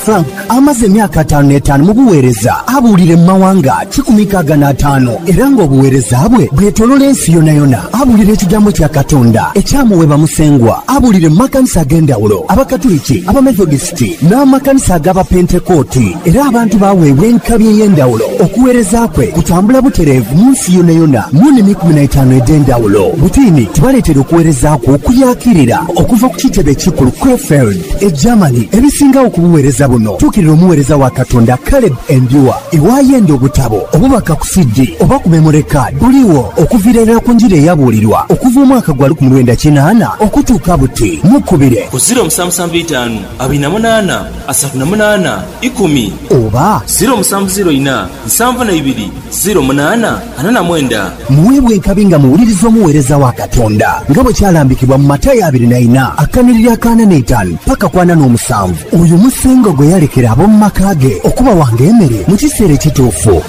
Frank amaze emyaka ataanu n'etaanu mu bugheereza, abuulire mu mawanga kikumi nkaaga n'ataanu, era ng'obugheereza bwe bwetolola ensi yonayona. Abuulire ekigambo kya Katonda ekyamuweebwa Musengwa. Abuulire mu makanisa ag'endhawulo, Abakatuliki, Abamethodisiti, n'amakanisa ag'Abapentekooti, era abantu baaweebwa enkabi ey'endhawulo. Okugheereza kwe kutambula butereevu mu nsi yonayona mu nnimi ikumi na itaanu edh'endhawulo. Butiini tibaleetera okugheereza kwo okuyaakirira okuva ku kitebe ekikulu Krefeld. E Germany ebisingagho ku buweereza buno, tuukirira omuweereza wa Katonda Caleb Endua. Iwaayo endi obutabo, obubaka ku CD, oba ku memory card buligho okuviira irala ku njiri eyabuulirwa okuva omwaka gwa lukumi lwenda kinaana okutuuka buti. Mukubire. Ku ziro musanvu musanvu itaanu abiri na munaana asatu na munaana ikumi. Oba. Ziro musanvu ziro ina nsanvu na ibiri. ziro munaana ana na mwenda. Muweebwe enkabi nga muwuliriza omuweereza wa Katonda, nga bwe kyalambikibwa mu Matayo abiri na ina akanhiriri akaana n'eitaanu paka ku ana n'omusanvu. Oyo Musengwa gwe yalekera ab'omu maka ge okubawanga emere mu kiseera ekituufu.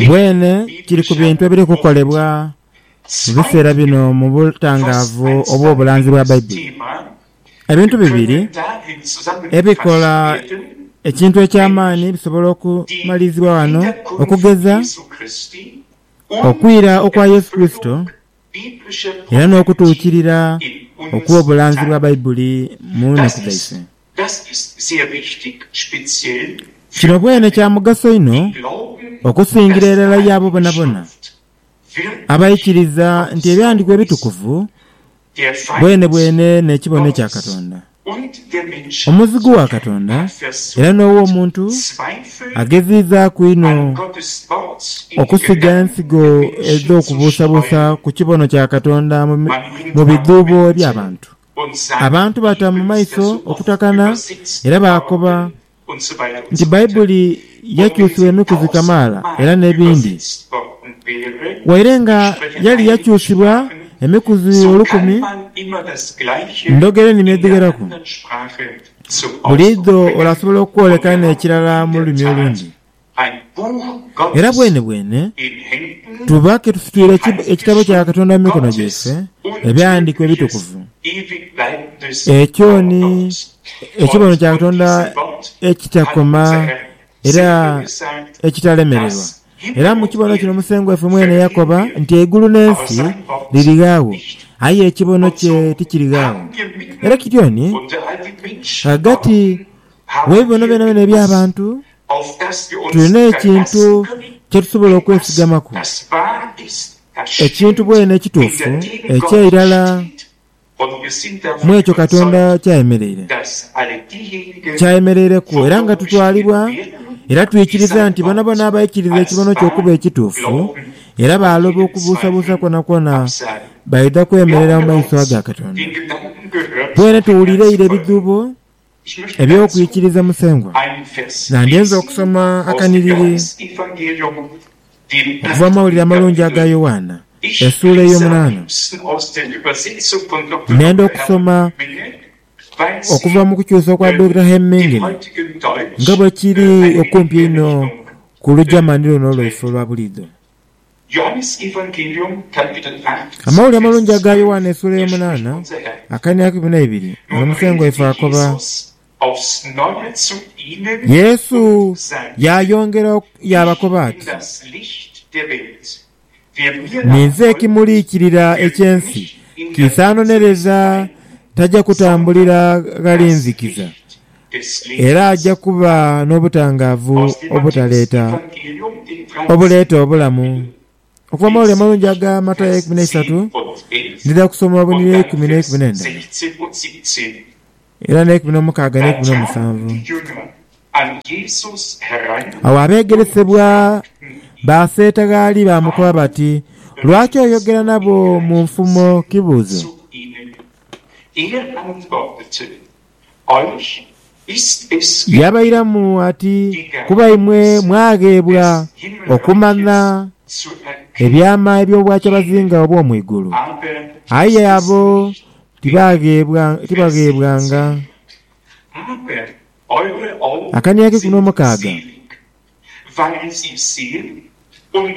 Bwene kiri ku bintu ebiri kukolebwa mu biseera bino mu butangaavu obw'obulanzi bwa Baibuli. Ebintu bibiri ebikola ekintu eky'amaani bisobola okumalirizibwa ghano, okugeza, okwira okwa Yesu Kurisito, era n'okutuukirira okw'obulanzi bwa Baibuli mu nnaku dhaife. Kino bwene kya mugaso inho okusingira irala y'abo bonabona abaikiriza nti Ebyandiwa Ebitukuvu bwenebwene n'ekibono ekya Katonda. Omuzigu wa Katonda era n'ow'omuntu ageziizaaku inho okusiga ensigo edh'okubuusabuusa ku kibono kya Katonda mu bidhuubo by'abantu. Abantu baata mu maiso okutakana era baakoba nti Baibuli yakyusibw'emikuzi kamaala era n'ebindi. Waire nga yali yakyusibwa emikuzi olukumi, ndhogera enimi edhigheraku. Buliidho orasobola okwoleka n'ekirala mu lulimi olundi. Era bwenebwene tuba ke tufukirira Ekitabo kya Katonda mu mikono gyaife, Ebighandiikibwa Ebitukuvu. Ekyo ni ekibono kya Katonda ekitakoma era ekitalemererwa. Era mu kibono kino Musengwa waife mwene yakoba nti eigulu n'ensi lirighagho, aye ekibono kye tikirighagho. Era kityo ni ghagati Mu bibono byonabyona eby'abantu, tulina ekintu kye tusobola okwesigamaku, ekintu bwene ekituufu eky'eilara mu ekyo Katonda ky'ayemeleire. Ky'ayemeleireku era nga tutwalibwa era twikiriza nti boonaboona abaikiriza ekibono kye okuba ekituufu era baaloba okubuusabuusa kwonakwona baidha kwemerera mu maiso ga Katonda. Bwene tuwulireire ebidhuubo. eby'okwikiriza Musengwa, nga ndyenze okusoma akanhiriri okuva mu Mawulire Amalungi aga Yoanna, esuula ey'omunaana, nenda okusoma okuva mu kukyusa kwa Durkheim Mingine, nga bwe kiri okumpi einho ku lujamani luno lwaife olwa buliidho. Amawulire Amalungi aga Yoanna esuula ey'omunaana akainiakimu n'eibiri, muno Musengwa waife akoba. Yesu yaayongera yaabakoba ati, Ninze ekimuliikirira eky'ensi, kiisaanonereza taja kutambulira ghali nzikiza. Era aja kuba n'obutangaavu obutaleeta, obuleeta obulamu. Okuva mu mawulire amalungi aga Matayo eikumi n'eisatu, ndidha kusoma obunhilira eikumi n'eikumi n'endala, era n'eikumi n'omukaaga n'eikumi n'omusanvu. Agho abeegeresebwa baaseeta gh'ali baamukoba bati, Lwaki oyogera nabo mu nfumo kibuuzo? Yaabairamu ati, Kuba imwe mwagheebwa okumanha ebyama eby'obwacabazinga obw'omu igulu, aye abo tibaagheebwanga. Akaniaghe ku n'omukaaga.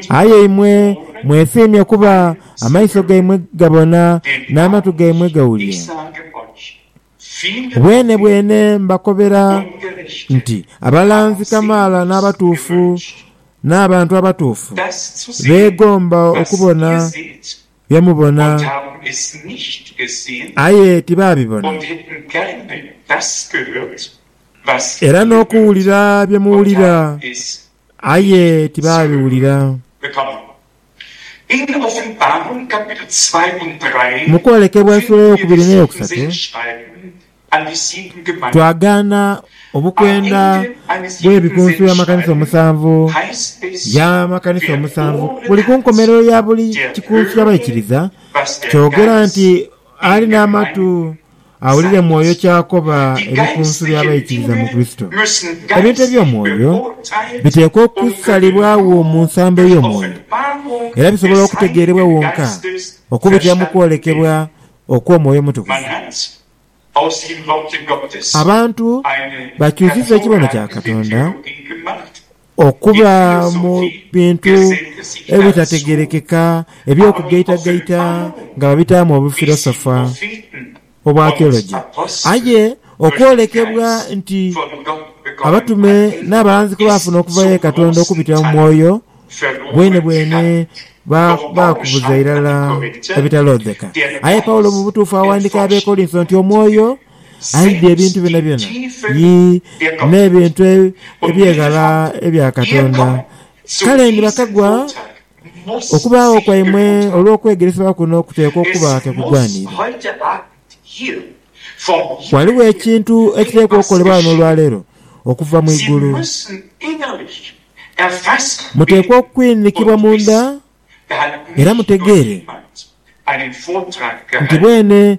Aye imwe mwefiimya kuba amaiso gaimwe gabona n'amatu gaimwe gawulira. Bwenebwene mbakobera nti abalanzi kamaala n'abatuufu n'abantu abatuufu beegomba okubona byamubona, aye tibaabibona, era n'okuwulira byamuwulira, aye tibaabiwulira. Mu kwolekebwa eifula ey'okubiri n'eyokusatu, Twagaana obukwenda bw'ebikunsu by'amakanisa omusanvu by'amakanisa omusanvu buli ku nkomerero ya buli kikunsu ky'abaikiriza. Kyogera nti ali n'amatu awulire Mwoyo ky'akoba ebikunsu by'abaikiriza mu Kurisito. Ebintu eby'omwoyo biteekwa okusalibwagho mu nsambo ey'omwoyo, era bisobola okutegeerebwa wonka okubitira mu kwolekebwa okw'Omwoyo Omutukuvu. Abantu bakyusiza ekibono kya Katonda okuba mu bintu ebitategerekeka eby'okugaitagaita nga babitaamu obufirosofa obwa theology. Aye okwolekebwa nti abatume n'abalanzi kwe baafuna okuva ghe Katonda okubitira mu Mwoyo, Bwenebwene ba, baakubuza irala ebitaloodheka. Aye Paulo mu butuufu aghandiika Abeekorintho nti Omwoyo aidhia ebintu byonabyona, yii, n'ebintu ebyeghala ebya Katonda. Kale ni bakagwa okubaagho kwaimwe olw'okwegeresebwa kuno kuteekwa okuba ke kugwaniire. Ghaligho ekintu ekiteekwa okukolebwa ghano olwaleero okuva mu igulu. Muteekwa okwinhikibwa munda era mutegeere nti bwene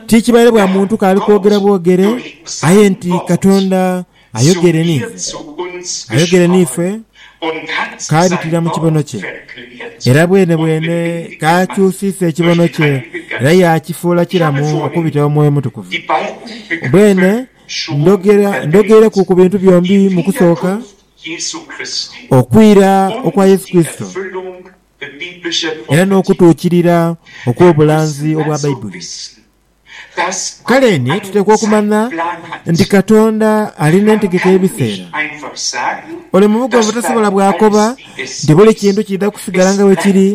ti kibaire bwa muntu k'ali kwogera bwogere, aye nti Katonda ayogere n'ife. Ayogere n'ife k'abitira mu kibono kye, era bwene bwene k'akyusiisa ekibono kye era yaakifuula kiramu okubita Omwoyo Omutukuvu. Bwene Ndhogera, ndhogeireku ku bintu byombi mu kusooka, okwira okwa Yesu Kurisito era n'okutuukirira okw'obulanzi obwa Baibuli. Kale ni tuteekwa okumanha nti Katonda ali n'entegeka y'ebiseera. Ole mu bugwanvu tasobola bw'akoba nti buli kintu kiidha kusigala nga bwe kiri,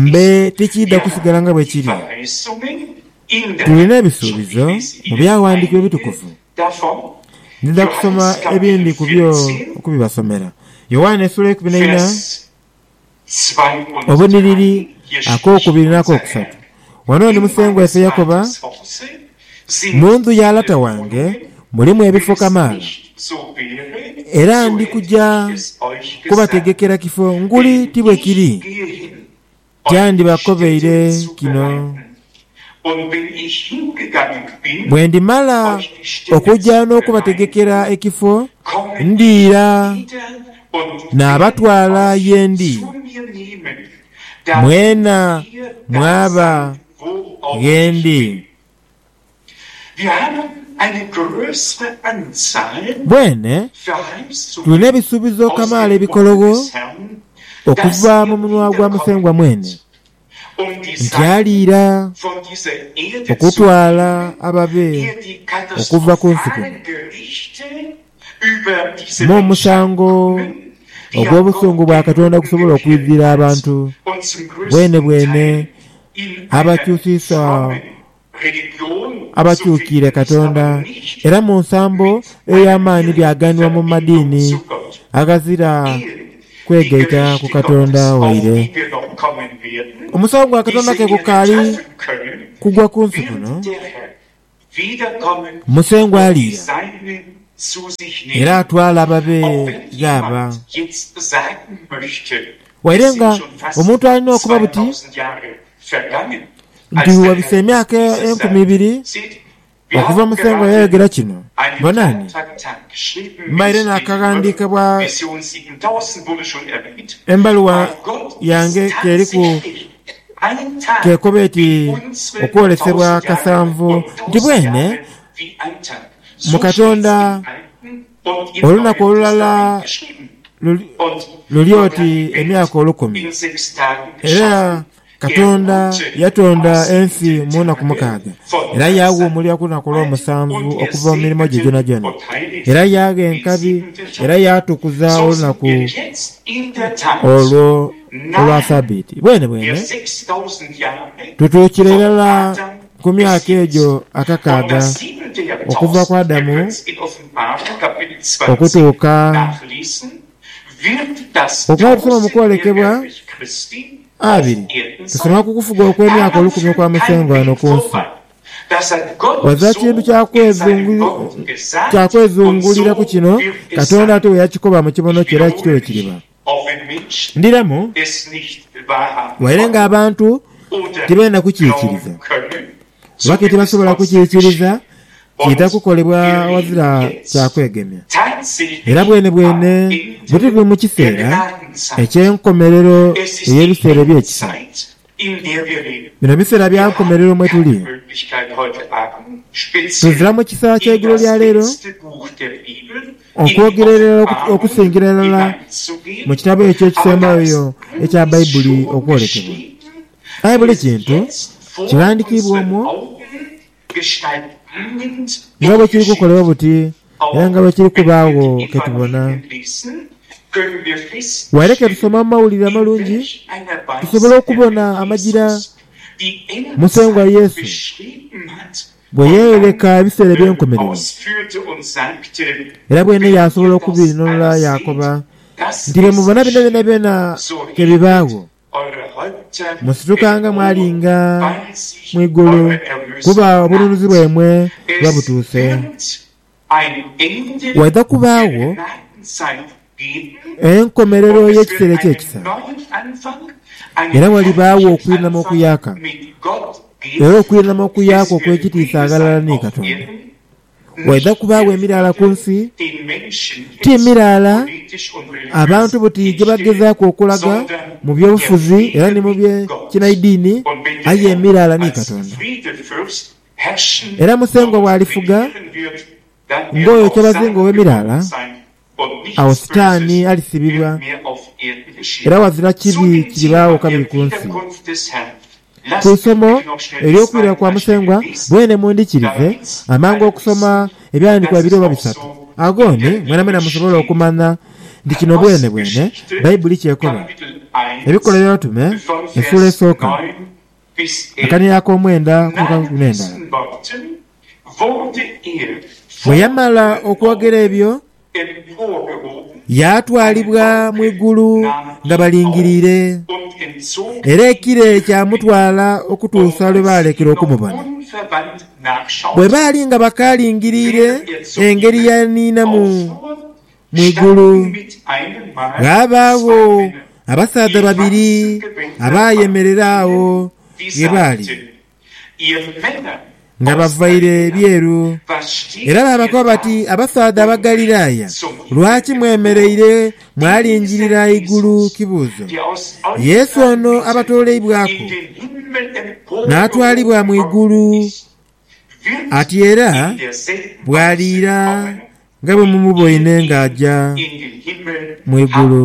mbe tikiidha kusigala nga bwe kiri. Tulina ebisuubizo mu Byawandiikibwa Ebitukuvu. Ndidha kusoma ebindi ku byo okubibasomera. Yoanne esula eikumi n'eina, obunhiriri ak'okubiri n'ak'okusatu, Wano ni musengwa ife yakoba, Mu ndhu ya Lata wange mulimu ebifo kamaala, era ndi kuja kubategekera kifo nguli ti bwe kiri. Tyandibakobeire kino, bwe ndimala okuja n'okubategekera ekifo, ndiira naabatwala ye ndi, mwena mwaba ghe ndi. Bwene tulina ebisuubizo kamaala ebikologho okuva mu munwa gwa Musengwa mwene, nti aliira okutwala ababe okuva ku nsi kuno m'omusango ogw'obusungu bwa Katonda ogusobola okwidhira abantu bwenebwene abakyusiisa Abakyukiire Katonda, era mu nsambo ey'amaani byaghanibwa mu madiini aghazira kwegaita ku Katonda waire. Omusawo gwa Katonda ke gukaali kugwa ku nsi kuno. Musengwa aliira, era atwala ababe ghaba. Waire nga omuntu alina okuba buti nti wabise emyaka enkumi ibiri okuva Muthengwa yayogera kino. Bonani, mbaire naakaghandiikebwa embaluwa yange k'eriku k'ekoba eti Okwolesebwa Kasanvu nti bwene mu Katonda olunaku olulala luli oti emyaka olukumi. Era Katonda yatonda ensi mu naku mukaaga, era yaaghumulira ku lunaku olw'omusanvu okuva mu mirimo gye gyonagyona. Era yaagha enkabi, era yaatukuza olunaku olwo olwa Sabiiti. Bwenebwene, tutuukira irala ku myaka egyo akakaaga okuva ku Adamu okutuuka Okw'okukoma mu kwolekebwa abiri kusima ku kufuga okw'emyaka olukumi okwa Musengwa ghano ku nsi. Oza kintu kya kwezunguliraku kino Katonda ati bwe yakikoba mu kibono kye era kityo bwe kiriba. Ndhiramu, waire ng'abantu tibeenda kukiikiriza. Lwaki tibasobola kukiikiriza idha kukolebwa aghazira kya kwegemya? Era bwenebwene bwe tuli mu kiseera eky'enkomerero ey'ebiseera eby'ekisa. Bino biseera bya nkomerero mwe tuli. Tuzira mu kisa ky'eigulo lya leero, okwogera irala okusingira irala mu kitabo ekyo ekisembayo ekya Baibuli okwolekebwa. Aye buli kintu kighandikiibwa omwo nga bwe kiri kukolebwa buti era nga bwe kiri kubaagho ke tubona. Waire ke tusoma mu Mawulire Amalungi, tusobola okubona amagira Musengwa Yesu bwe yeeyoleka ebiseera eby'enkomerero. Era bwene yaasobola okubinunula yaakoba nti, Bye mubona bino byonabyona ke bibaagho. Musitukanga mwalinga mu igulu, kuba obununuzi bwaimwe buba butuuse. Waidha kubaagho enkomerero y'ekiseera eky'ekisa, era walibaagho okwinama okuyaaka, era okwinama okuyaaka okw'ekitiisa ghalala ni Katonda. Waidha kubaagho emiraala ku nsi, ti miraala abantu buti gye bagezaaku okulaga mu by'obufuzi era ni mu bye kinaidini, aye emiraala ni Katonda. Era Musengwa bw'alifuga ng'oyo kyabazinga ow'emiraala. Agho Sitaani alisibibwa, era ghazira kibi kiribaagho kabiri ku nsi. Ku isomo ery'okwirira kwa Musengwa bwene mundhikirize amangu okusoma Ebyahandiikibwa bibiri oba bisatu agho ni mwenamwena musobole okumanha nti kino bwenebwene Baibuli ky'ekoba. Ebikolwa by'Abatume, Esuula Esooka. Akania ak'omwenda ku kaghenda. Bwe yamala okwogera ebyo, yaatwalibwa mu igulu nga balingiriire, era ekire kyamutwala okutuusa lwe baalekera okumubona. Bwe baali nga bakaalingiriire engeri yaaniinamu Mu igulu ghaabaagho abasaadha babiri abaayemerera agho ghe baali, nga bavaire ebyeru, era baabakoba bati, Abasaadha Abagalilaaya, lwaki mwemereire mwalingirira igulu kibuuzo? Yesu ono abatooleibwaku, naatwalibwa mu igulu. Ati era bw'aliira nga bwe mumuboine ng'aja mu igulu.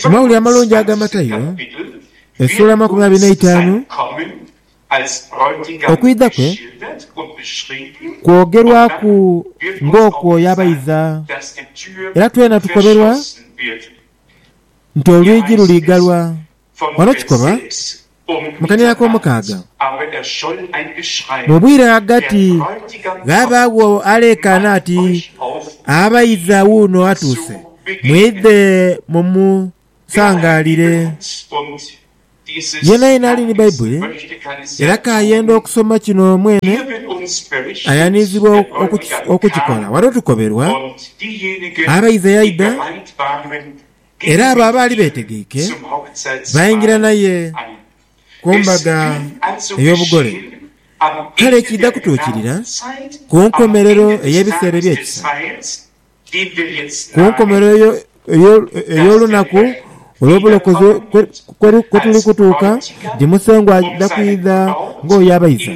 Mu Mawulire Amalungi aga Matayo, esuula amakumi abiri n'eitaanu, okwidha kwe kwogerwaku ng'okwo yabaidha, era twena tukoberwa nti olwigi luliigalwa. Ghano kikolwa mu kania ak'omukaaga. Mu bwire ghagati ghaabaagho aleekaana ati, Abaidha wuuno atuuse, mwidhe mumusangalire. Yeenayeena ali ni Baibuli era k'ayenda okusoma kino mwene, ayanhizibwa okukikola. Ghano tukoberwa abaidha yaidha, era abo abaali beetegeike baingira naye ku mbaga ey'obugole. Kale kiidha kutuukirira ku nkomerero ey'ebiseera eby'ekisa. ku nkomerero ey'olunaku olw'obulokozi kwe tuli kutuuka, nti Musengwa aidha kwidha ng'oyo abaiza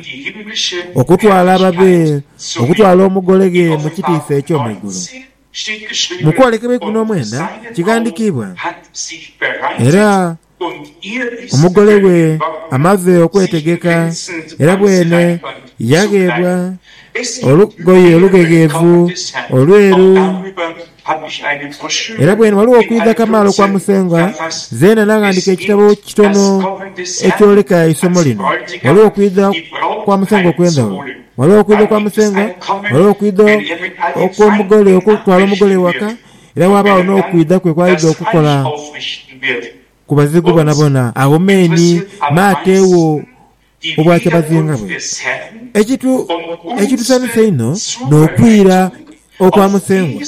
okutwala ababe, okutwala Omugole ghe mu kitiisa eky'omu igulu. Mu kwolekebwa eikumi n'omwenda kighandikiibwa, Era Omugole we amaze okwetegeka era bwene yagheebwa olugoye olughegheevu olweru. Era bwene ghaligho okwidha kamaala okwa Musengwa. Zeena naghandika ekitabo kitono ekyoleka eisomo lino. Ghaligho okwidha kwa Musengwa okw'endhaghulo. Ghaligho okwidha kwa Musengwa, ghaligho okwidha okw'omugole okutwala omugole ewaka. era waabagho n'okwidha kwe kw'aidha okukola ku bazigu bonabona. Agho meni m'ateegho obwakyabazinga bwe. Ekintu ekitusanhusa inho n'okwira okwa Musengwa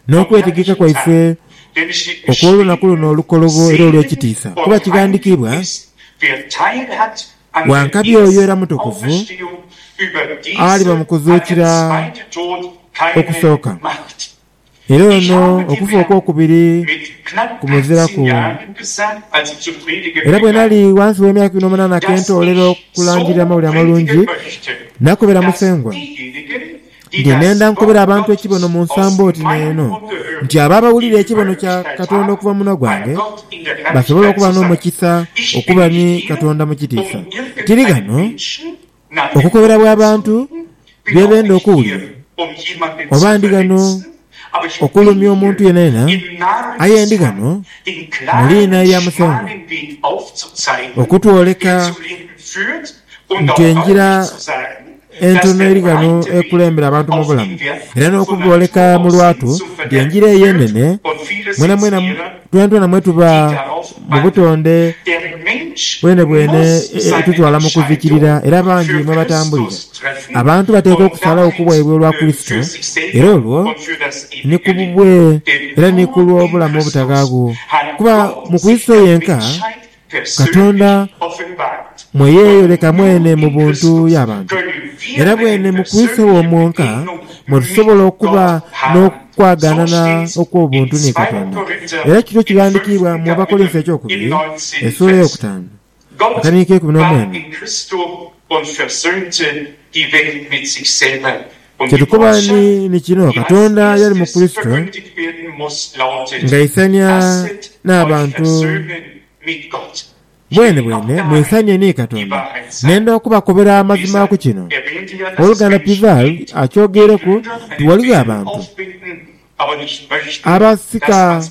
n'okwetegeka kwaife okw'olunaku luno olukolobo era olw'ekitiisa, kuba kighandikiibwa Wankabi oyo era mutukuvu aliba mu kuzuukira okusooka, era ono okufa okw'okubiri kumuziraku. Era bwe nali ghansi w'emyaka ikumi n'omunaana ke ntoolera okulangirira Amawulire Amalungi, nakobera Musengwa. Ngenda ndha nkobera abantu ekibono mu nsambo oti n'eno, nti abo abawulira ekibono kya Katonda okuva mu munwa gwange basobola okuba n'omukisa okuba ni Katonda mu kitiisa. Tiri ghano okukoberabwa abantu bye benda okuwulira, oba ndi ghano okulumya omuntu yenayena, aye ndi ghano mu liina lya Musengwa okutwoleka nti engira entono eri ghano ekulembera abantu mu bulamu, era n'okubooleka mu lwatu nti engira eyo enene mwenamwena twentwena mwe tuba mu butonde bwenebwene etutwala mu kuzikirira era bangi mwe batambulira. Abantu bateekwa okusalagho ku bwaibwe olwa Kurisito, era olwo ni ku bubwe era ni ku lw'obulamu obutaghaagho, kuba mu Kurisito yenka Katonda mwe yeeyoleka mwene mu buntu y'abantu, era bwene mu kwisa ewo mwonka mwe tusobola okuba n'okwaganana okw'obuntu ni Katonda. Era kino kighandikiibwa mu Abakolinso eky'okubiri, esuula ey'okutaanu, akaniiko eikumi n'omwenda. Kye tukoba ni, ni kino, Katonda yali mu Kurisito ng'aisania n'abantu bwenebwene mwisanie ni Katonda. Nenda okubakobera amazima ku kino. Oluganda Pivaud akyogeireku nti ghaligho abantu Abaasika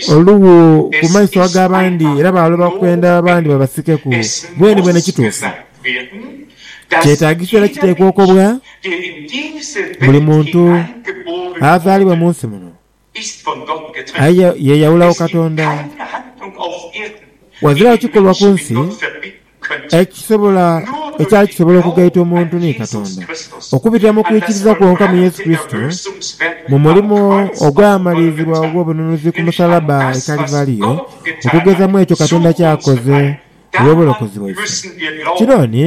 olughu ku maiso ag'abandi era baaloba kwenda abandi babasikeku. Bwenibweni kituufu. Kyetaagisa era kiteekwa okobwa buli muntu azaalibwa mu nsi muno. Aye yeeyawulagho Katonda. Ghaziragho kikolwa ku nsi ekisobola ekyali kisobola okugaita omuntu ni Katonda. Okubitira mu kwikiriza kwonka mu Yesu Kurisito, mu mulimo ogwamalirizibwa ogw'obununuzi ku musalaba e Kalivariyo, okugeza mu ekyo Katonda ky'akoze olw'obulokozi bwaife, kino ni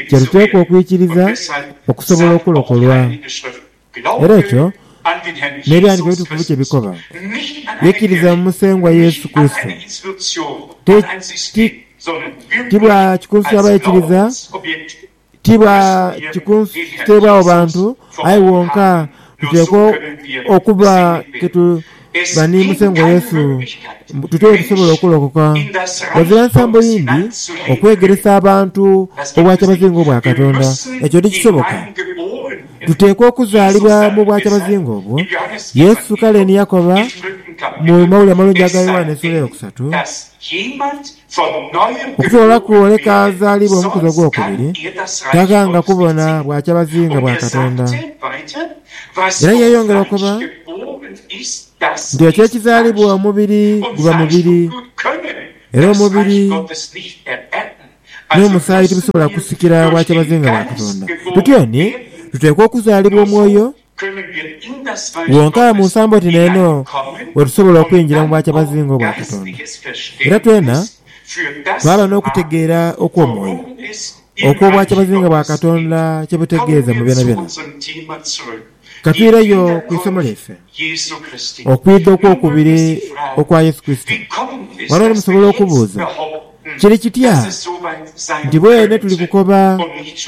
kye tuteekwa okwikiriza okusobola okulokolwa. Era ekyo n'ebighandhiko ebitukuvu kye bikoba. Yeikiriza mu Musengwa Yesu Kurisito. Ti, ti, ti bwa kikunsuibwa baikiriza, ti bwa kikunsuibwawo bantu, aye wonka tuteekwa okuba ke tu, Baniimuse ngo Yesu mbu tutyo bwe tusobola okulokoka. Ghazira nsambo yindi okwegeresa abantu obwakyabazinga obwa Katonda. Ekyo ndi kisoboka? Tuteekwa okuzaalibwa mu bwakyabazinga obwo. Yesu kale ni yakoba mu Mawulire Amalungi aga Yoanna essuula ey'okusatu, Okufuula kwoleka azaalibwa omukuzi ogw'okubiri taghanga kubona bwakyabazinga bwa Katonda. Era yeeyongera okoba nti ekyo ekizaalibwa omubiri guba mubiri, era omubiri n'omusaayi tibisobola kusikira bwakyabazinga bwa Katonda. Tutyoni? Tuteekwa okuzaalibwa omwoyo. Gwonka mu nsambo oti n'eno we tusobola okwingira mu bwakyabazinga obwa Katonda. Era twena twaba n'okutegeera okw'omwoyo okw'obwakyabazinga bwa Katonda kye butegeeza mu byonabyona. Ka twireyo ku isomo lyaife, Okwidha okw'Okubiri okwa Yesu Kurisito. Ghano ni musobola okubuuza, Kiri kitya nti bwene tuli kukoba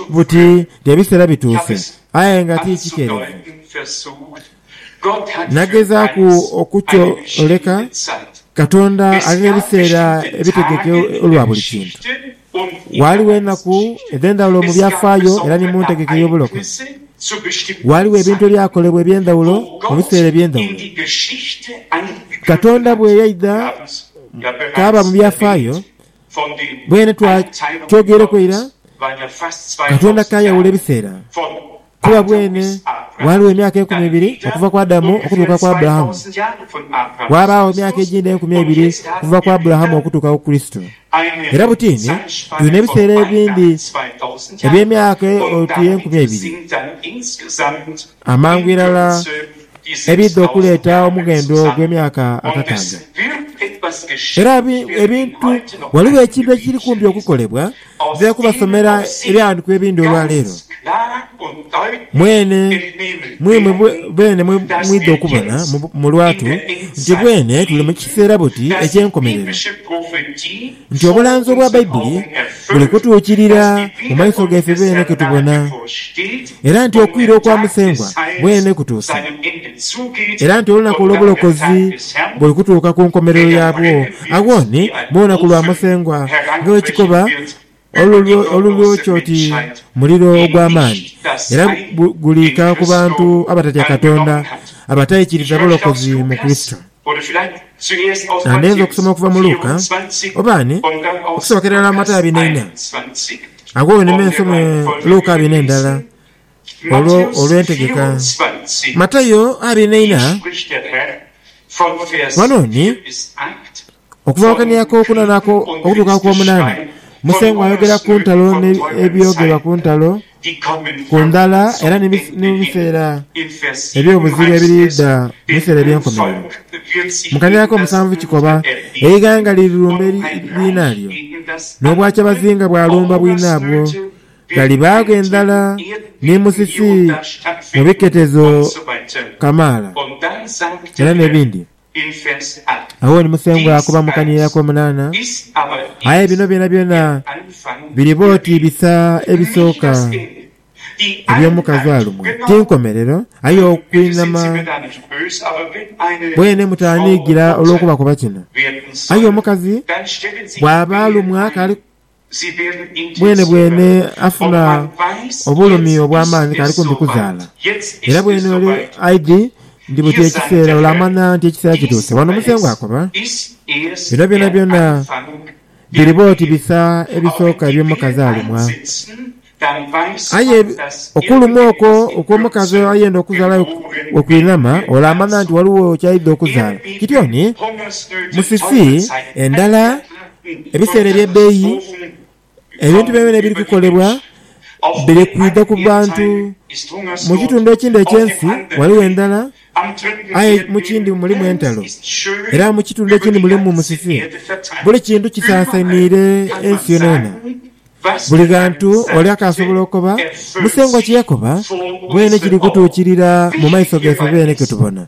buti nti ebiseera bituuse Aye nga ti kikerevu. Nagezaaku okukyoleka Katonda ali n'ebiseera ebitegeke olwa buli kintu. Ghaligho enaku edh'endhaghulo mu byafaayo era ni mu ntegeka ey'obulokozi. Ghaligho ebintu ebyakolebwa eby'endhaghulo mu biseera eby'endhaghulo. Katonda bwe yaidha kaaba mu byafaayo, Bwene twakyogereku eira, Katonda kayawula ebiseera, kuba bwene ghaligho emyaka enkumi ebiri okuva ku Adamu okutuuka ku Aburahamu, ghabaagho emyaka egindi enkumi ebiri okuva ku Aburahamu okutuuka ku Kurisito. Era butiini tulina ebiseera ebindi eby'emyaka oti enkumi ebiri. Amangu irala ebiidha okuleeta omughendo ogw'emyaka akakaaga. Era ebintu, ghaligho ekintu ekiri kumpi okukolebwa. Nja kubasomera ebighandikwa ebindi olwa leero. Mwene mwimwe beene mwidha okubona mu lwatu nti bwene tuli mu kiseera buti eky'enkomerero, nti obulanzi obwa Baibuli buli kutuukirira mu maiso gaife beene ke tubona. era nti okwira okwa Musengwa mwene kutuuse, era nti olunaku olw'obulokozi buli kutuuka ku nkomerero yaabwo, agho ni mu lunaku lwa Musengwa nga bwe kikoba olulyoki oti muliro ogw'amaani, era guliika ku bantu abatatya Katonda abataikiriza bulokozi mu Kurisito. Nga ndheenze okusoma okuva mu Luka, oba ni okusobokera irala mu Matayo abina ina, agho wenime nsome Luka abina endala olwo olw'entegeka. Matayo abina ina, ghano ni okuva ku kania ak'okunana okutuuka ku k'omunana, Musengwa ayogera ku ntalo n'ebyogerwa ku ntalo. Ku ndala, era ni mu biseera eby'obuzibu ebiriidha mu biseera eby'enkomerero, mu kanira ak'omusanvu kikoba, eighanga lirirumba liinalyo, n'obwakyabazinga bwalumba bwinabwo. Ghalibagho endhala ni musisi mu biketezo kamaala, era n'ebindi. Agho ni Musengwa akuba mu kaniira ak'omunaana. Aye bino byonabyona biriba oti bisa ebisooka eby'omukazi alumwa. Ti nkomerero, aye okwinama bwene mutaaniigira olw'okubakoba kino. Aye omukazi bw'aba alumwa akali Bwenebwene afuna obulumi obw'amaani k'ali kumpi kuzaala. Era bwene oli aidhi nti buti ekiseera olaamanya nti ekiseera kituuse. Wano Musengwa akoba, Bino byonabyona biriba oti bisa ebisooka eby'omukazi alumwa. Aye okulumwa okwo okw'omukazi ayenda okuzaala bwe kwinhama, olaamanha nti ghaligho ky'aidha okuzaala. Kityo ni mu fifi endala, ebiseera eby'ebbeeyi, ebintu byonabyona ebiri kukolebwa biri kwidha ku bantu. Mu kitundu ekindi eky'ensi ghaligho endhala aye mu kindi mulimu entalo, era mu kitundu ekindi mulimu musiifi. Buli kintu kisaasainiire ensi yonayona. Buli ghantu ole akaasobola okoba, Musengwa kye yakoba mwene kiri kutuukirira mu maiso gaife beene ke tubona.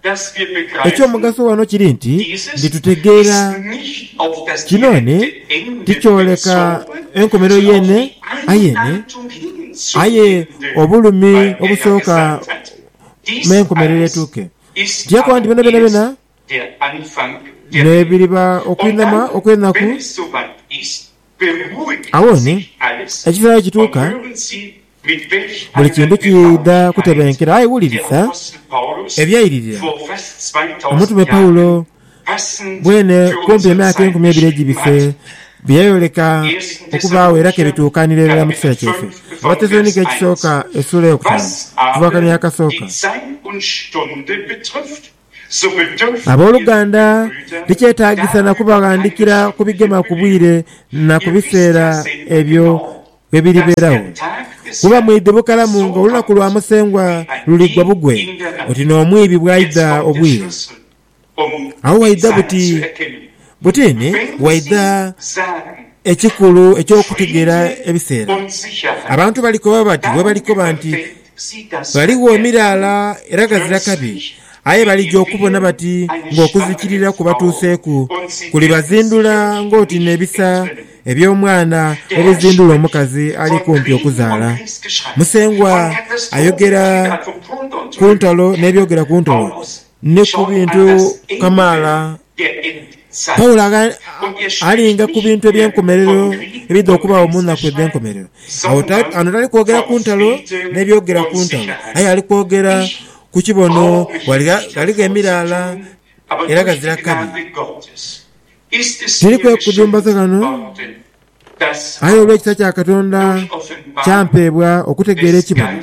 Eky'omugaso ghano kiri nti ndi tutegeera kinoone tikyoleka enkomerero yeene ayeene, aye obulumi obusooka me enkomerero etuuke. Tiyakoba nti byonabyona byona n'ebiriba okwinama okw'enaku. Agho ni ekifo aghekituuka buli kintu kiidha kutebenkera. Aye wulirisa ebyairirira omutume Paulo bwene kumpi emyaka enkumi ebiri egibise bye yayoleka okubaagho era ke bituukanira irala mu kiseera kyaife. Abatesalonike Ekisooka esula ey'okutaanu okuva ku kaini akasooka. Aboluganda, tikyetaagisa na kubaghandikira ku bigema ku bwire na ku biseera ebyo bwe biribeeragho, kuba mwidhi bukalamu ng'olunaku lwa Musengwa luliigwa bugwe, oti n'omwiibi bw'aidha obwire. Agho waidha buti? Buti ni waidha ekikulu eky'okutegeera ebiseera. Abantu balikoba bati bwe balikoba nti, Ghaligho emiraala era ghazira kabi, aye balija okubona bati ng'okuzikirira kubatuuseeku. Kulibazindula ng'oti n'ebisa eby'omwana bwe bizindula omukazi ali kumpi okuzaala. Musengwa ayogera ku ntalo n'ebyogera ku ntalo. Ni ku bintu kamaala. Paulo alinga ku bintu eby'enkomerero ebidha okubaagho mu nnaku edh'enkomerero. Agho ghano tali kwogera ku ntalo n'ebyogera ku ntalo, aye ali kwogera ku kibono ghaligho emiraala era ghazira kabi. Tiri kwekudhumbaza ghano, aye olw'ekisa kya Katonda kyampeebwa okutegeera ekibono.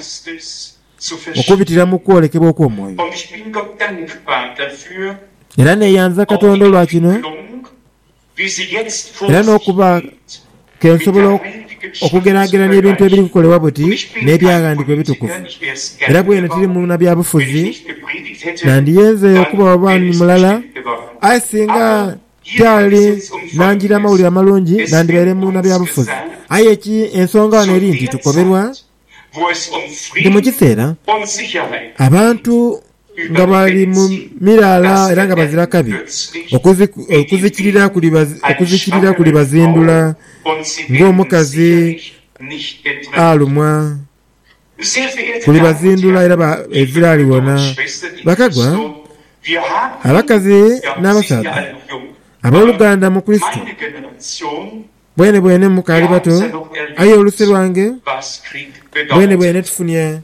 okubitira mu kwolekebwa okw'omwoyo. Era neeyanza Katonda olwa kino, era n'okuba ke nsobola okugeraagerania ebintu ebiri kukolebwa buti n'Ebyaghandiikibwa Ebitukuvu. Era bwene tiri munabyabufuzi, nandiyenze okubagho bwami mulala, aye singa tyali nanjira mawulire amalungi, nandibaire munabyabufuzi. Aye ki? Ensonga ghano eri nti tukoberwa. Ni mu kiseera abantu nga bali mu miraala era nga bazira kabi, okuzikirira kulibazindula ng'omukazi alumwa, kulibazindula era ezira aliwona. Bakagwa, abakazi n'abasaadha, ab'oluganda mu Kurisito, Bwenebwene mukaali bato, aye oluse lwange bwenebwene tufunye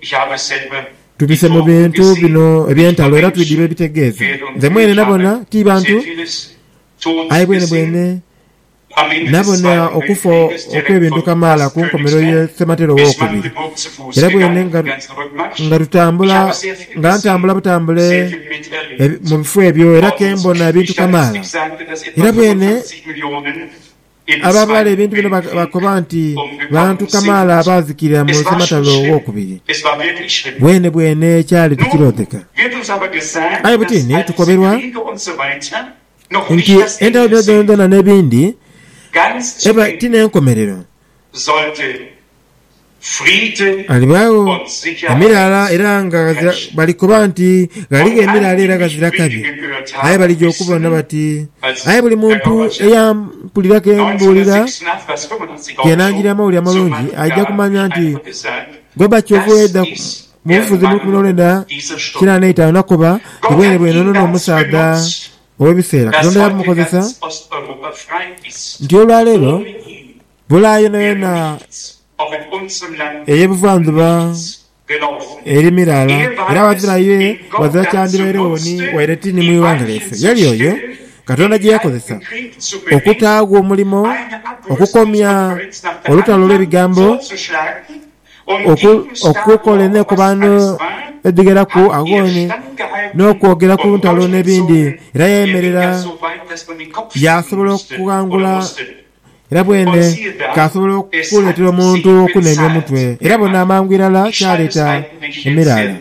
tubise mu bintu bino eby'entalo era twidhirwe ebitegeeza. Nze mwene nabona ti bantu, aye bwenebwene nabona okufa okw'ebintu kamaala ku nkomerero ye Sematera Owokubiri. Era bwene nga tutambula, nga ntambula butambule mu bifo ebyo era ke mbona ebintu kamaala. Era bwene. Abaabaghala ebintu bino bakoba nti bantu kamaala abaazikirira mu sematalo ow'okubiri. Bwenebwene kyali tikiroodheka. Aye butini tukoberwa nti entalo dhino dhoonadhoona n'ebindi eba ti n'enkomerero. Ghalibaagho emiraala era nga ghazira, balikoba nti, Ghaligho emiraala era ghazira kabi. Aye balija okubona bati, Aye buli muntu eyampulira ke mbuulira, ke naanjulira amawulire amalungi, aija kumanya nti Goba kyova oidha mu bufuzi mu lukumi n'olwenda kina n'eitaanu nakoba nti bwenebwene ono n'omusaadha ow'ebiseera Katonda yamukozesa nti olwaleero Bulaaya yonayona ey'ebuvandhuba eri miraala, era ghazira ye, ghazira kyandibairegho ni waire ti ni mu ighanga lyaife. Yali oyo Katonda gye yakozesa okutaagho omulimo okukomya olutalo olw'ebigambo, okukola eneekobaano edhigheraku agho n'okwogera ku ntalo n'ebindi. Era yayemerera yaasobola okughangula Era bwene kaasobola okuleetera omuntu okunenya omutwe, era bona amangu irala kyaleeta emiraala.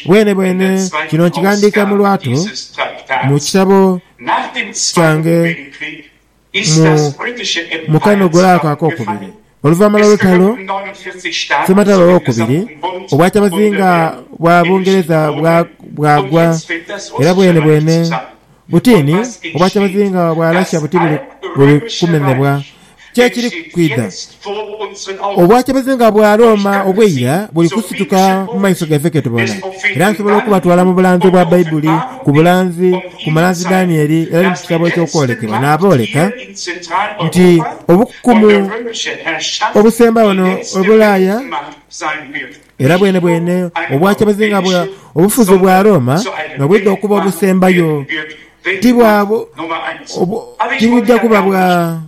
Bwenebwene kino nkighandiika mu lwatu mu kitabo kyange mu mukanogole ako ak'okubiri. Oluvaanhuma lw'olutalo, sematalo ow'okubiri obwa kyabazinga bwa Bungereza bwagwa, era bwenebwene Butini obwakyabazi nga bwalashya buti buli buli kumenebwa. Ki ekiri kwidha? Obwakyabazi nga bwa Rooma obw'eira buli kusituka mu maiso gaife ke tubona. Era nsobola okubatwala mu bulanzi obwa Baibuli, ku bulanzi, ku mulanzi Danieli, era ni mu kitabo eky'Okwolekebwa, naabooleka nti obukukumu obusembagho no e Bulaaya, Era bwenebwene obwakya bazinga bwa obufuzi bwa Rooma nobwidha okuba obusembayo, ti bwa bu, tibwidha kuba bwa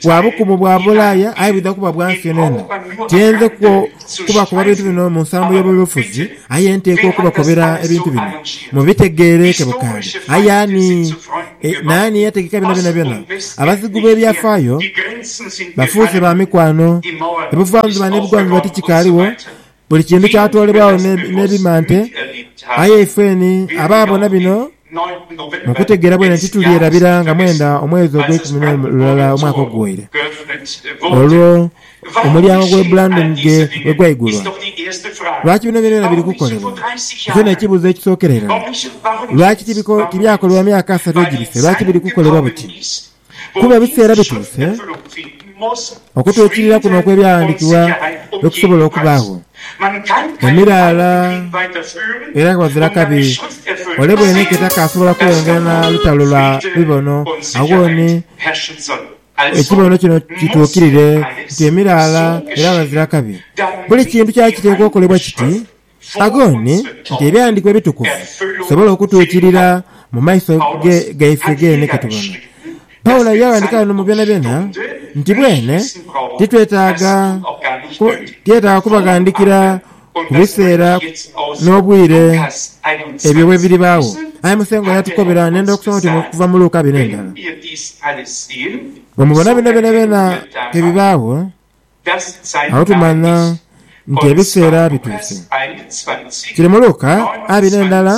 bwa bukumu bwa bulaaya, aye bwidha kuba bwa nsi yonayona. Tiyenze kwo kubakoba bintu bino mu nsambo y'obulofuzi, aye nteekwa okubakobera ebintu bino mubitegeereke bukaali. Aye ani E, naani eyategeka bino byonabyona? Abazigu b'ebyafaayo bafuuse ba mikwano. Ebuvanjuba n'ebugwanjuba tikikaaliwo, buli kintu kyatoolebwagho n'ebimante. Aye ifeeni abaabona bino mu kutegeera bwene titulyerabira nga mwenda omwezi ogw'eikumi n'olulala omwaka oguwaire. Olwo. Omulyango gw'e Brandon ghe bwe gwaigulwa, lwaki bino byonabyona biri kukolebwa? Ekyo n'ekibuuzo ekisookera irala. Lwaki tibyakolebwa myaka asatu egibise? Lwaki biri kukolebwa buti? Kuba ebiseera bituuse okutwikirira kuno okw'Ebyawandiikibwa lwe kusobola okubaagho. Emiraala era nga ghazira kabi, ole bw'eneeka etakaasobola kweyongera na lutalo lwa bibono, agho ni Ekibono kino kituukirire nti emiraala era bazira kabi. Buli kintu kyali kiteekwa okolebwa kiti, agho ni, nti Ebyahandiikibwa Ebitukuvu bisobole okutuukirira mu maiso gaife geene ketubona. Paulo yaaghandiika ghano mu byonabyona nti bwene titwetaaga, tiyetaaga kubaghandiikira. Ku biseera n'obwire ebyo bwe biribaagho. Aye Musengwa yatukobera n'endha okusoma oti okuva mu Luka bino endala, Bwe mubona bino byonabyona ke bibaagho, agho tumanya nti ebiseera bituuse. Kiri mu Luka a bino endala.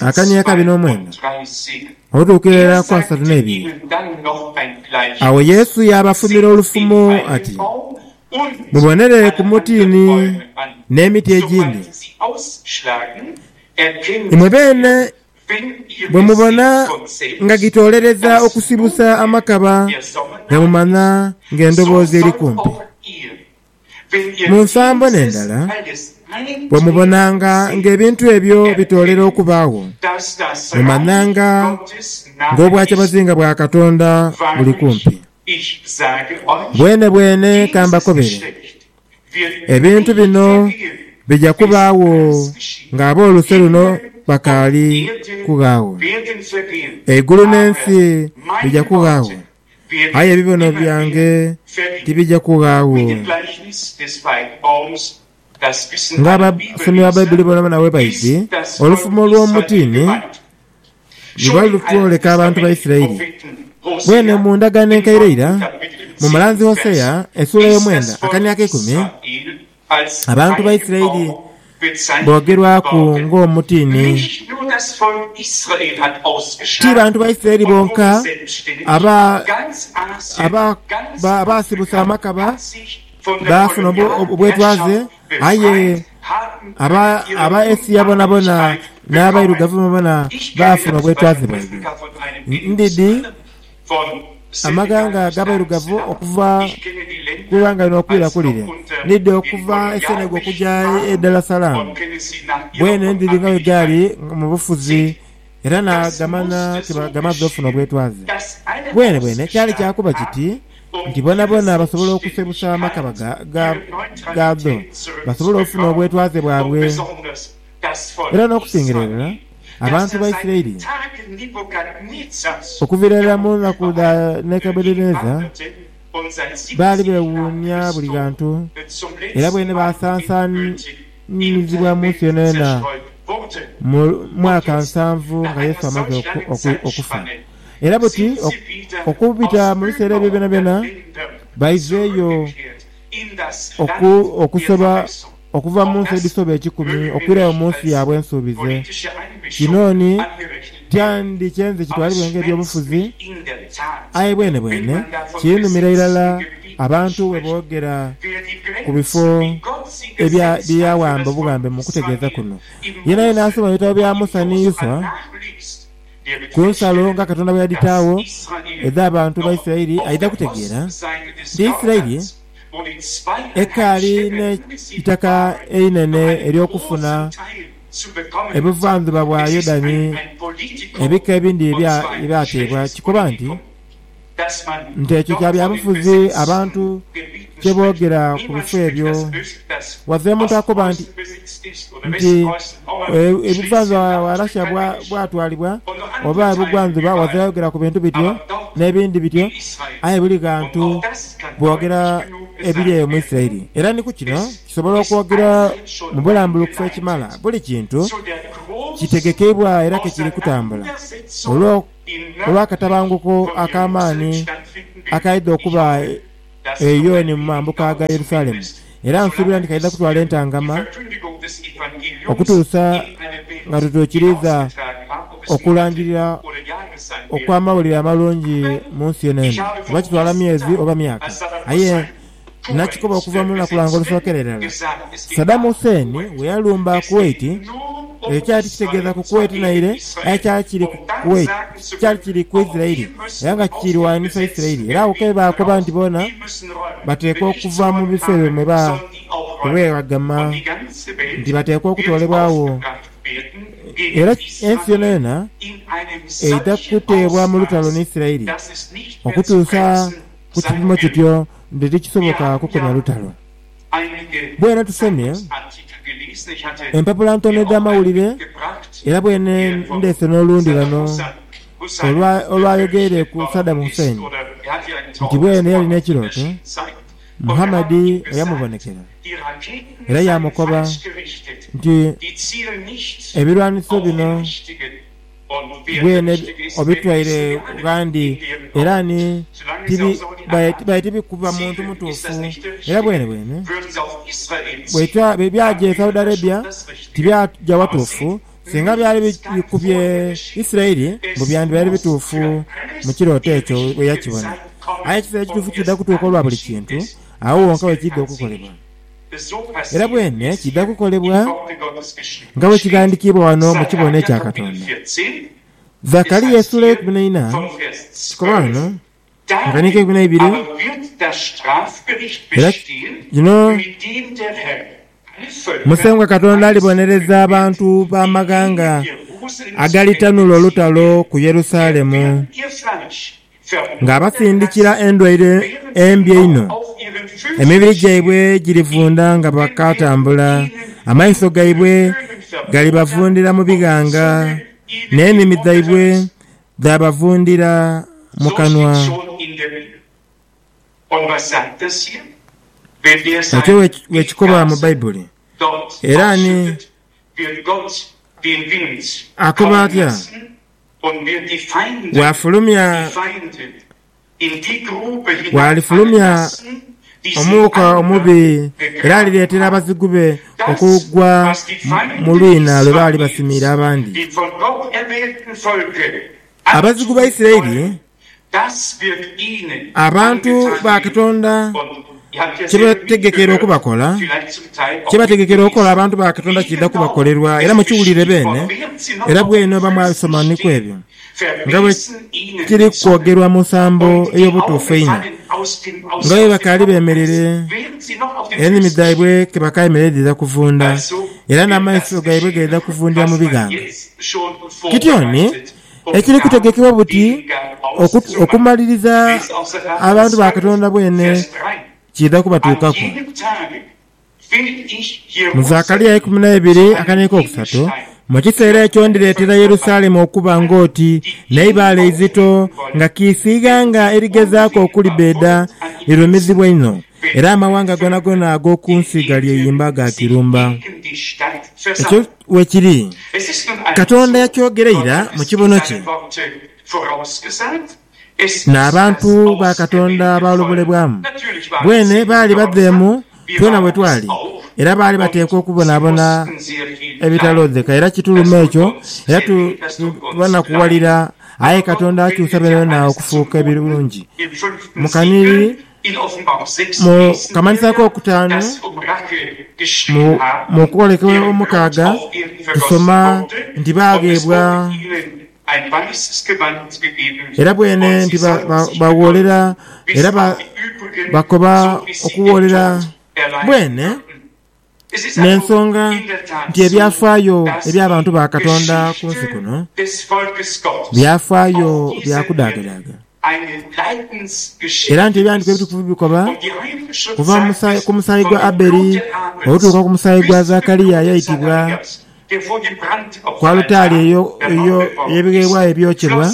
Akani akabi n'omwendo otuukira irala ku asatu n'ebiri. Agho Yesu yaabafumira olufumo ati, Mubonere ku mutiini n'emiti egindi. Imwe beene bwe mubona nga gitoolereza okusibusa amakaba, nga mumanya ng'endoboozi eri kumpi. Mu nsambo n'endala, bwe mubonanga ng'ebintu ebyo bitoolera okubaagho, mumanhanga ng'obwakyabazinga bwa Katonda buli kumpi. Bwenebwene ka mbakobere, ebintu bino bija kubaagho ng'ab'oluse luno bakaali kughaagho. Eigulu n'ensi bija kughaagho, aye ebibono byange tibija kughaagho. Ng'abasomi ba Baibuli boonabona bwebaidhi, olufumo olw'omutiini ni bwe lutwoleka abantu ba Isiraeli. Bwene mu Ndagaano Enkaire ira, mu mulanzi Hosea esuula ey'omwenda akani akeikumi, Abantu ba Isiraeli boogerwaku ng'omutiini. Ti bantu ba Isiraeli bonka abaasibusa amakaba baafuna obwetwaze, aye Abaesia bonabona n'abairugavu bonabona baafuna obwetwaze bwaibwe. Ndidhi Amaghanga ag'abairugavu okuva ku ighanga lino okwira ku lire, ni dho okuva e Senegal okuja e Dar es Salaam, bwene ndhiri nga bwe dhaali mu bufuzi era naagamanha nti gamaze ofuna obwetwaze. Bwenebwene kyali kya kuba kiti nti boonaboona basobola okusebusa amakaba gaadho basobole ofuna obwetwaze bwabwe. Era n'okusingira irala, abantu ba Isiraeli, okuviira irala mu naku dha Nebukadeneeza, baali beewuunia buli ghantu, era bweene baasansaanizibwa mu nsi yoonayoona mu mwaka nsanvu nga Yesu amaze okufa. Era buti okubita mu biseera ebyo byonabyona, baizeeyo Oku, okusoba okuva mu nsi edhisoba ekikumi okwirayo mu nsi yaabwe ensuubize. Kino ni, kyandikyenze kitwalibwe nga eby'obufuzi, aye bwenebwene kiinhumira irala abantu bwe boogera ku bifo ebya, bye yaawamba obughambe mu kutegeeza kuno. Yeenayeena asoma ebitabo bya Musa ni Yuswa, Ku nsalo nga Katonda bwe yadhitaagho edh'abantu ba Isiraeli, aidha kutegeera nti Isiraeli ekaali n'eitaka einene ery'okufuna ebuvandhuba bwa Yodani. Ebika ebindi bye byateebwa kikoba nti. nti ekyo kya bya bufuzi abantu kye boogera ku bifo ebyo. Wave omuntu akoba nti, nti ebuvanjuba wa Russia bwa, bwatwalibwa, oba ebugwandhuba, wave ayogera ku bintu bityo, n'ebindi bityo, aye buli ghantu boogera ebiri eyo mu Isiraeli. Era ni ku kino kisobola okwogerwa mu bulambulukufu ekimala, buli kintu kitegekeibwa era ke kiri kutambula. Olwo. olw'akatabanguko ak'amaani akaidha okuba e Iyoni mu mambuka ga Yerusalemu, era nsuubira nti kaidha kutwala entangama okutuusa nga tutuukiriiza okulangirira okw'amawulire amalungi mu nsi eno. Oba kitwala myezi oba myaka, aye Nakikoba okuva mu lunaku lwange olusokera irala Saddam Hussein weyalumba Kuwait, ekyo kyali kitegeeza ku Kuwait naire aye kyali kiri ku Kuwait kyali kiri ku Isirairi era nga kiirwanisa Isirairi era agho kebaakoba nti boona bateekwa okuva mu bifo ebyo mwe ba kweghagama nti bateekwa okutoolebwagho era ensi yonayona eidha kuteebwa mu lutalo ni Isirairi okutuusa Ku kipimo kityo, nti tikisoboka kukomya lutalo. Bwena tusomye empapula ntono edh'amawulire, era bwene ndheese n'olundi ghano olwa, olwayogeire ku Saddam Hussein, nti bwene yalina ekirooto Muhammad eyamubonekera, era yaamukoba nti, Ebirwaniso bino. Gwe ne obitwaire ghandi, era ni tibi, baye, baye tibikuba muntu mutuufu. Era bwene bwene bweitwa bye byaja e Saudi Arabia, tibyaja watuufu. Singa byali bikubye Isirairi, mbu byandibaire bituufu mu kirooto ekyo bwe yakibona. Aye ekiseera ekituufu kidha kutuuka olwa buli kintu, agho wonka we kidha okukolebwa. Era bwene kidha kukolebwa nga bwe kighandikiibwa ghano mu kibono ekya Katonda. Zakaria esuula eyeikumi n'eina kikolwa ghano mu kanika eikumi n'eibiri, era kino Musengwa Katonda alibonereza abantu b'amaghanga agalitanhula olutalo ku Yerusalemu. Ng'abasindikira endwaire embi einho, emibiri gyaibwe girivunda nga bakaatambula, amaiso gaibwe galibavundira mu bighanga, n'enimi dhaibwe dhaabavundira mu kanwa. Ekyo bwekikoba mu Baibuli, era ani akoba atya? Bw'afulumya, bw'alifulumya omuuka omubi era alireetera abazigu be okugwa mu lwina lwe baali basimiire abandi. Abazigu ba Isiraeli Abantu ba Katonda kye beetegekera okubakola, kye beetegekera okukola abantu ba Katonda kiidha kubakolerwa, era mukiwulire beene, era bwene oba mwabisomaniku ebyo, nga bwe kiri kwogerwa mu nsambo ey'obutuufu einho, nga bwe bakaali beemereire, enimi dhaibwe ke bakaayemerera dhidha kuvunda, era n'amaiso gaibwe gaidha kuvundira mu bighanga. Kityo ni Ekiri kutegekebwa buti okumaliriza abantu ba Katonda bwene kiidha kubatuukaku. Mu Zakaria ikumi na ibiri akane k'okusatu, Mu kiseera ekyo ndireetera Yerusalemu okuba ng'oti n'eibaale eizito nga kiisi ighanga erigezaaku okulibbeeda lirumizibwa inho, era amawanga goonagona ag'oku nsi galyeyimba gaakirumba. Weekiri, Katonda yakyogera ira mu kibono kye. N'abantu ba Katonda baalobulebwamu. Bweene baali badheemu twena we twali, era baali bateekwa okubonaabona ebitalodheka. Era kituluma ekyo, era tubanakuwalira. Aye Katonda akyusa byonabyoona okufuuka ebirungi. Mukanhi. Mu kamanhiso ak'okutaanu, mu kwolekebwa omukaaga, tusoma nti baagheebwa era bwene nti bagholera era bakoba okugholera bwene. N'ensonga nti ebyafaayo eby'abantu ba Katonda ku nsi kuno byafaayo bya kudagadaaga, era nti Ebighandiiko Ebitukuvu bikoba kuva ku musaayi gwa Abeli okutuuka ku musaayi gwa Zakaria ayaitibwa Ku alutaari eyo ey'ebigheebwayo ebyokyebwa,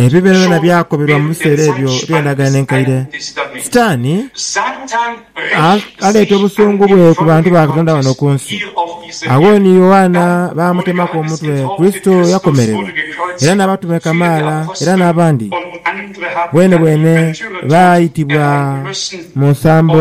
ebyo byonabyona byakobebwa mu biseera ebyo eby'Endagaano Enkaire. Sitaani aleeta obusungu bwe ku bantu ba Katonda ghano ku nsi. Agho ni Yoanna baamutemaku omutwe, Kurisito yakomererwa, era n'abatume kamaala era n'abandi bwenebwene baaitibwa mu nsambo